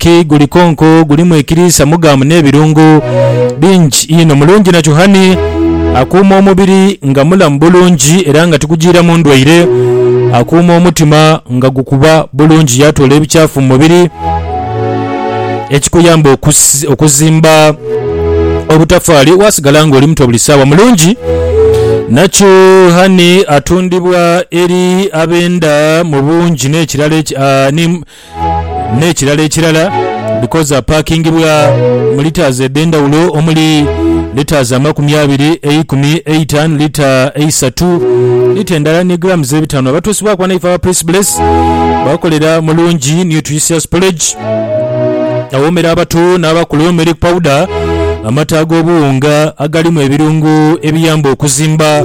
Ki guli konko gulimu ekiriisa mugamu n'ebirungo bingi inho. Mulungi na chuhani akuuma omubiri nga mulamu bulungi era nga tigujiiramu ndwaire. Akuuma omutima nga gukuba bulungi yaatoola ebikyafu mu mubiri ekikuyamba okuzimba obutafaali waasigala ng'oli muto buli saawa. Mulungi na chuhani atundibwa eri abenda mu bungi n'ekirala n'ekirala ekirala because apakingibwa mu litres edh'endhawulo omuli litres amakumi abiri, eikumi, eitanu, lita eisatu, lita endala ni grams ebitano. Abatuusibwaku ghano ife aba Prince Bless bakolera mu Lungi Nutritious Porridge awoomera abato n'abakulu, Milk Powder, amata ag'obuwunga agalimu ebirungo ebiyamba okuzimba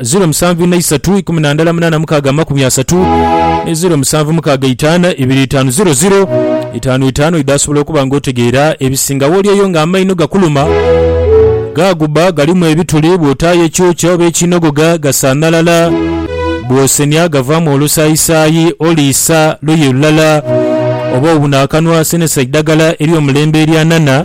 ziro musanvu ina isatu ikumi na ndala munana mukaaga amakumi asatu ni ziro musanvu mukaaga itaana ibiri itaanu ziro ziro itaanu itaanu idho asobola okuba nga otegeera ebisingawo olyeyo nga amaino gakuluma gaaguba galimu ebituli bwotaayo ekyokya oba ekiinogoga gasanhalala bwosenia gavaamu olusaayisaayi oliisa luyi lulala oba obuna akanwa senesa idhagala eryomulembe eryanana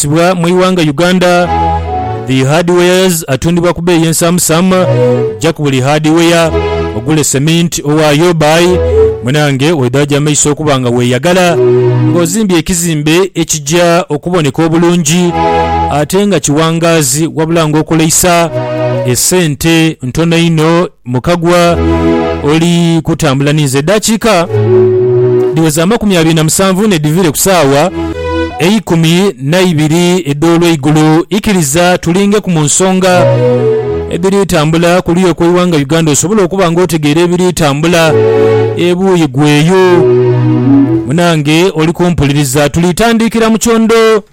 Ebikozesebwa mu ighanga Uganda The hardwares atundibwa ku beeyi ensaamusaama Ja ku buli hardware ogule cement owaayo Bye munange oidhajo amaiso okuba nga weeyagala ng'ozimbye ekizimbe ekija okuboneka obulungi ate nga kiwangaazi wabula ng'okoleisa esente ntono inho Mukagwa oli kutambula ni nze edaakiika dhiweza amakumi abiri na musanvu n'edhiviire ku saawa eikumi na ibiri edh'olweigulo. Ikiriza tulingeku mu nsonga edhiri tambula ku luya okw'eighanga Uganda osobole okuba nga otegeera ebiri tambula ebuuyi gho eyo. Munange oli kumpuliriza, tulitandiikira mu kyondo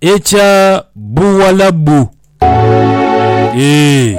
ekya Buwalabu, eeh.